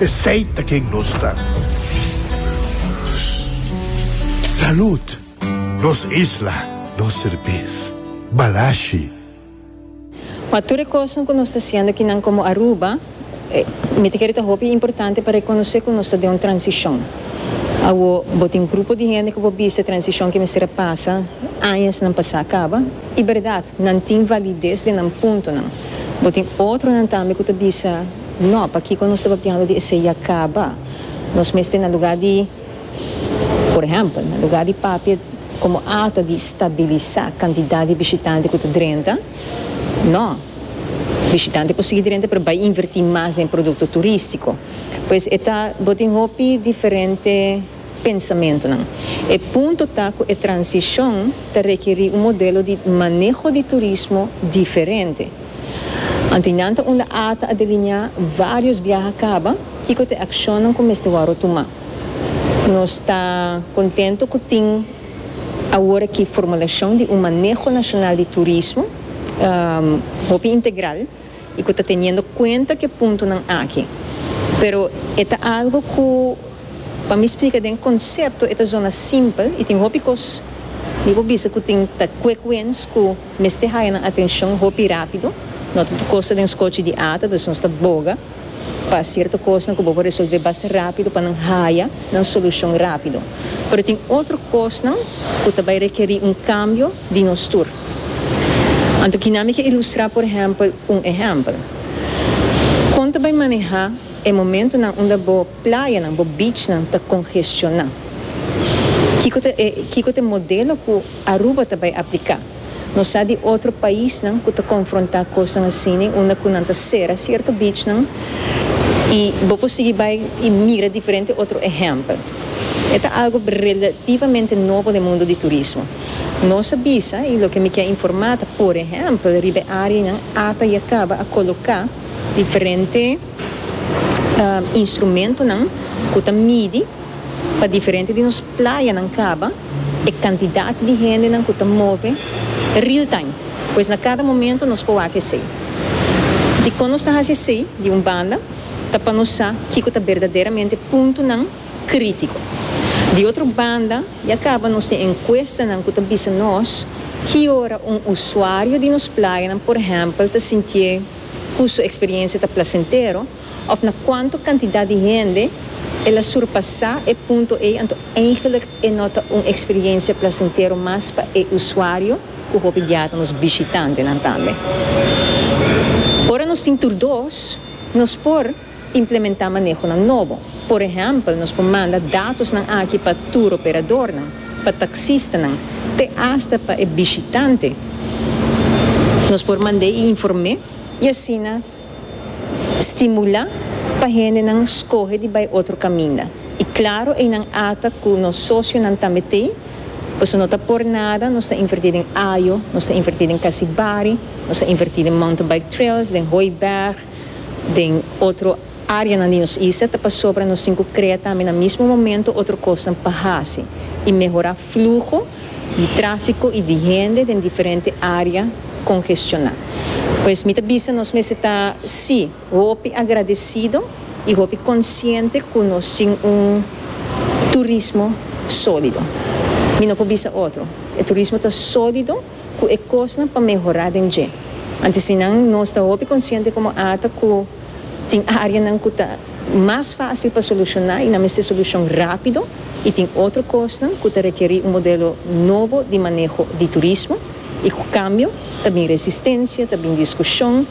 Esey ta ken nos ta. Salud! Nos isla, nos serbes. Balashi. Pa tur e kosnan ku nos ta siendo aki nan komo Aruba, mi ta kere ta hopi importante pa rekonosé ku nos ta den un transishon. Awo bo tin grupo di hende ku bo bisa e transishon ke mester a pasa añasnan pa sa kaba. I bèrdat, nan tin valides den nan puntonan. Bo tin otronan tambe ku ta bisa. No, pakico nos ta papiando di esey ya caba? Nos mester na lugar di, por ehempel, na lugar di papia como alta di stabilisa cantidad di bishitante cu ta drenta, no, bishitante por sigui drenta pero bay inverti mas den producto turistico. Pues e ta, bo tin hopi diferente. pensamentonan. E punto ta cu e transicion ta rekeri un modelo di maneho di turismo diferente. Anto y nan ta unda ata a delinea varios biaha caba y cu ta e accionnan cu mester wòrdo tuma. Nos ta contento cu tin awor aki formulacion di un maneho nacional di turismo hopi integral. y cu ta teniendo cuenta cu e puntonan aki. Pero e ta algo cu pa mi splica den concepto e ta zona simpel y tin hopi cos mi por bisa cu tin ta quick wins cu mester haya nan atencion hopi rapido. No ta tur cos ta den scochi di ata dus nos ta boga pa cierto cosnan cu bo por resolve basta rapido pa nan haya nan solucion rapido. Pero tin otro cosnan cu ta bay requeri un cambio. di nos tur. Anto kina mi ke ilustrá por ehèmpel un ehèmpel. Kon ta bai manehá e momentunan unda bo playanan, bo beachnan ta kongestioná? Kiko ta e kiko ta e modelo ku Aruba ta bai apliká? Nos sa di otro paisnan ku ta konfrontá kosnan asini unda ku nan ta sera sierto beachnan i bo por sigui bai i mira diferente otro ehèmpel. E ta algu relativamente nobo den mundu di turismo. Nos a bisa y loke mi kier informa ta por ehempel riba e areanan ata y a caba a coloca diferente instrumentonan cu ta midi pa diferente di nos playanan caba e cantidad di hendenan cu ta move real time. Pues na cada momento nos por wak esey. Dicon nos ta haci esey? Di un banda ta pa nos sa kico ta berdaderamente puntonan. crítico. Di otro banda, ya caba nos tin encuestanan cu ta bisa nos ki ora un usuario di nos playanan, por ehempel, ta sintié cu su experiencia ta placentero of na cuanto cantidad di hende el a surpasá e punto ei anto eigenlijk e no ta un experiencia placentero mas pa e usuario cu hopi biaha ta nos bishitantenan tambe. Ora nos tin tur dos, nos por. Implementá manehonan nobo. Por ehèmpel, nos por manda datosnan aki pa tur operadornan, pa taksistanan, te asta pa e bishitante. Nos por mand'é i inform'é i asina stimulá pa hendenan skohe di bai otro kaminda. I klaro einan ata ku nos sosionan tambe t'ei, pasobra no ta por nada, nos ta invertí den Ajo, nos ta invertí den Kasibari, nos ta invertí den Mountain Bike Trails, den Hooiberg, den otro áreanan di nos isla ta pasobra nos tin ku krea tambe na mismo momento otro kosnan pa hasi i mehorá fluho di tráfiko i di hende den diferente área kongestioná. Pues mi ta bisa nos mester ta sí hopi agradesido i hopi konsiente ku nos tin un turismo sólido. Mi no por bisa otro, e turismo ta sólido. cu e cosnan pa mehora den dje. Anto si nan nos ta hopi consciente como ata cu tin areanan cu ta mas facil pa soluciona y nan mester solucion rapido y tin otro cosnan cu ta requeri un modelo nobo di maneho di turismo y cu cambio ta bin resistencia, ta bin discusion,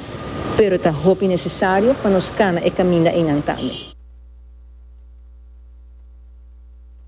pero ta hopi necesario pa nos cana e caminda eynan tambe.